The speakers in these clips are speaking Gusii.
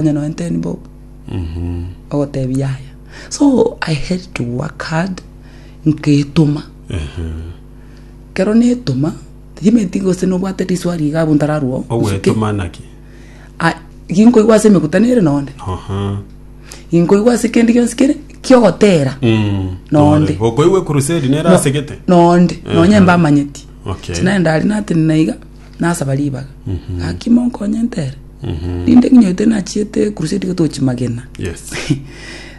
Onye noe nteni bobe ogotebi yaya so I had to work hard ngetoma kero netoma timenti gose nobwate riswari iga abwo ntararwo gusike ogwetoma naki Ah, ginkoigwa ase emeguta nere nonde Aha. ginkoigwa ase kende gionsi kere kiogotera Mm. Nonde. okoigwa ekurusedi nere asegete nonde nonye mbamanyeti Okay. sinarendari natene naiga nasaba ribaga, gaki monkonye ntere, rinde ng'inyotire nachiete ekurusedi gotochi magena. Yes.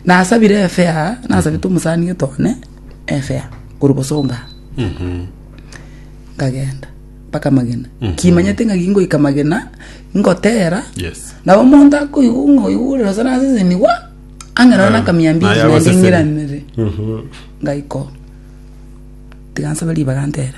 Nasabire efea, nasabete omosani gete one efea, korwa bosonga nkagenda mpaka magena kimanyete ng'aki ngoika magena ngotera Yes. nabo omonto akoigwa ng'a oigwa ore rosa nasesenigwa ang'e naro nakamia mbiri Naye naende agoseseni. ng'iranere ngaika oo tiga nsaba ribaga ntere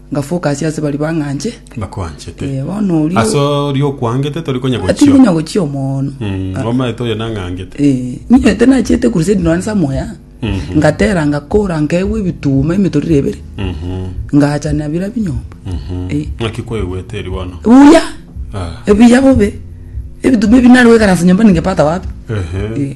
Ngafoka ase ase baria bang'anche. Bakwanchete. Eh, bono oria- Ase oria okwangete tori konya Atiri gochio. konya gochia omoono. Mm, Ah, Omaete oyo nang'angete. eh, ninyete nachiete crusade nonya ase amoya. Mhm. Ngatera ngakora nkaegwa ebituma emitorire ebere. Mhm, Ngacha na bira binyomba. mhm. Eh. Ng'aki kwaigwete eri bono? Buya. Ah, Ebiya bobe. Ebituma ebi nari goikaransa nyomba ningepata wapi? ehe. Eh.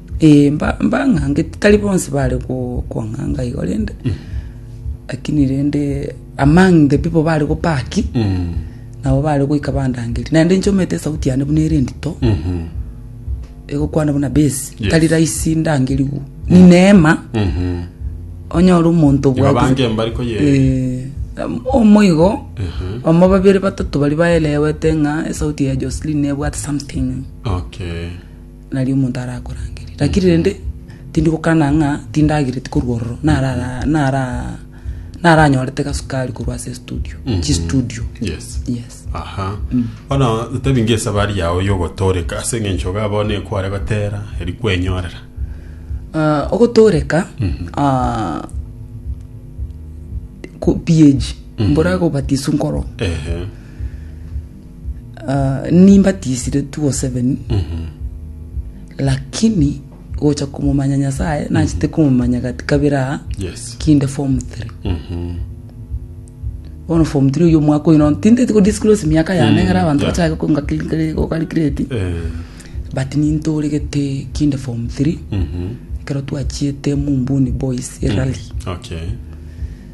Ee, mbang'angete, tari bonsi bare kong'anga igo rende, lakini rende among the people bare gopaki, nabo bare goika bandangerie. Naende nchomete esauti yane buna ere endito, egokwana buna bass, tari rahisi ndangerigwe. Ni neema, onyore omonto Igo obwate- abange mbari koyereka. Eh, omo igo, omo babere batato baria baelewete ng'a esauti ya Jocelyn nebwate something. Okay. nario omonto arakorangerie. Lakini rende tindi gokana ng'a tindagereti korwa ororo, nara nara naranyorete gasukari korwa ase estudio, chistudio. yes Yes. aha bono totebi nge esabari yao yogotoreka ase eng'encho iga bono ekware gotera eri kwenyorera Ah, ogotoreka ah, ku- PAG mbora gobatiswa nkoro ehe ah, nimbatisire 207 lakini gocha komomanya nyasaye nachete komomanya gati kabere aa Yes. kinde form 3 bono form 3 oyo omwaka oyo no tintete ko disclose miaka yane ngara abanto yeah. bachake kongakirikire gokarikireti Eh, but nintoregete kinde form 3 mhm. ekero twachiete mumbuni boys erali Okay.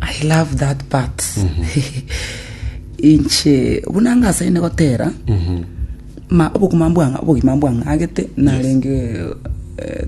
I love that part inche buna ngasaine gotera ma obogima mbwang'a obogima mbwang'agete narenge eh,